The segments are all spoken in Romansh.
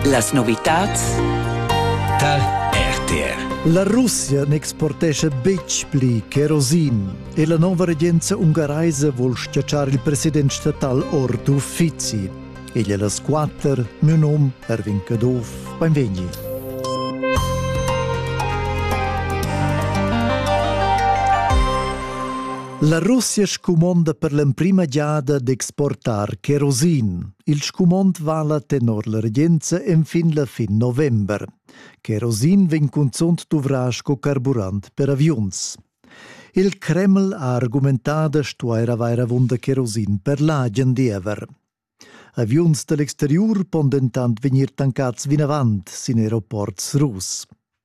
Las novitads dal RTR. La Russia n'exportescha betg pli kerosin e la nova regenza ungaraisa vul stgatschar il president statal ord uffizi. Egl e las quatter, mio nom Erwin Caduff, benvegni. La Russia scumonda per l'emprima giada d'exportar kerosin. Il scumond vala tenor la regenza enfin la fin november. Kerosin vegn cunzunt duvrà sco carburant per aviuns. Il Kreml ha argumentà da stuair avair avunda kerosin per l'agen diever. Aviuns da l'exteriur pon dentant vegnir tancats vinavant sin aeroports russ.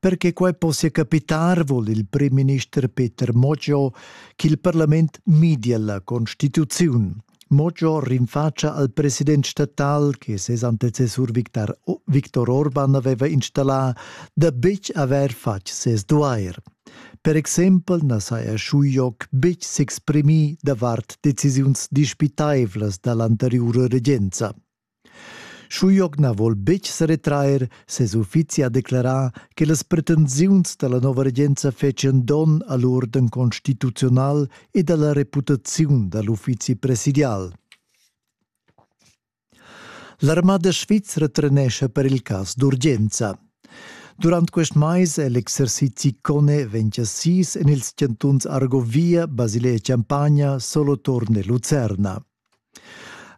Per che quei possia capitar vul il primminister Peter Moggio ch'il parlament midia la constituziun. Moggio rinfacia al president statal che ses antecessur Victor, Victor Orban aveva installà da betg haver fatg ses duair. Per exempel na saja Schujoc betg s'exprimì davart decisiuns dispitaivlas da l'anteriura regenza. Schujoc na vol betg seretrair, ses uffizi ha declerà che las pretensiuns da la nova regenza fetschian donn a l'urden constituziunal ed a la reputaziun da l'uffizi presidial. L'armada svizra trenescha per il cas d'urgenza. Durant quest mais è l'exercizi CONE ventia sis en ils chantuns Argovia, Basilea e Champagna, Soloturn e Lucerna.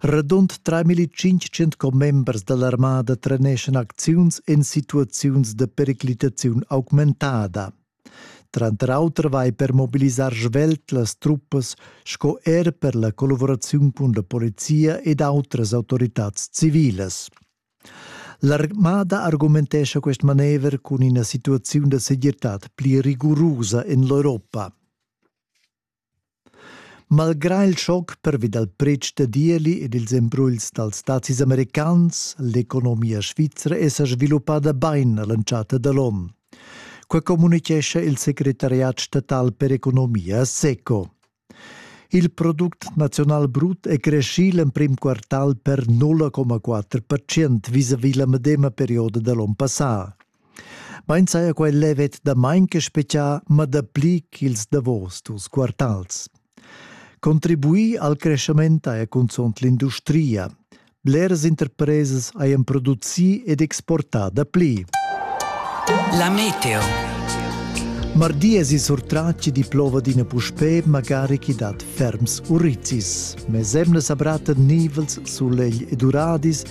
Radund 3500 commembers dall'armada treneschan acziuns en situaziuns da periclitaziun augmentada. Tranter auter vai per mobilisar svelt las truppas sco er per la collaboraziun cun la polizia ed outras autoritads civilas. L'armada argumentescha quest manever cun ina situaziun da segirtad pli rigurusa en l'Europa. Malgrà il schoc pervi dal pretsch da ieli ed ils embruls dals stazis americans, l'economia svizra è sa sviluppada bain a l'entschatta da l'onn. Qua communitgescha il secretariat statal per economia SECO. Il product naziunal brut è creschì l'emprim quartal per 0,4 vis-à-vis la medema perioda da l'onn passà. Mein saja quai levet damain che spetgià ma dapli ch'ils davos dus quartals. Contribuir al creschament haja cunzunt l'industria. Bleras interpresas hajan producì ed exportà dapli. La meteo. Mardi es i surtraci di plova d'ina puspè magari chi dat ferms urrizis. Mes emnas abratta nivels, sulegl ed uradis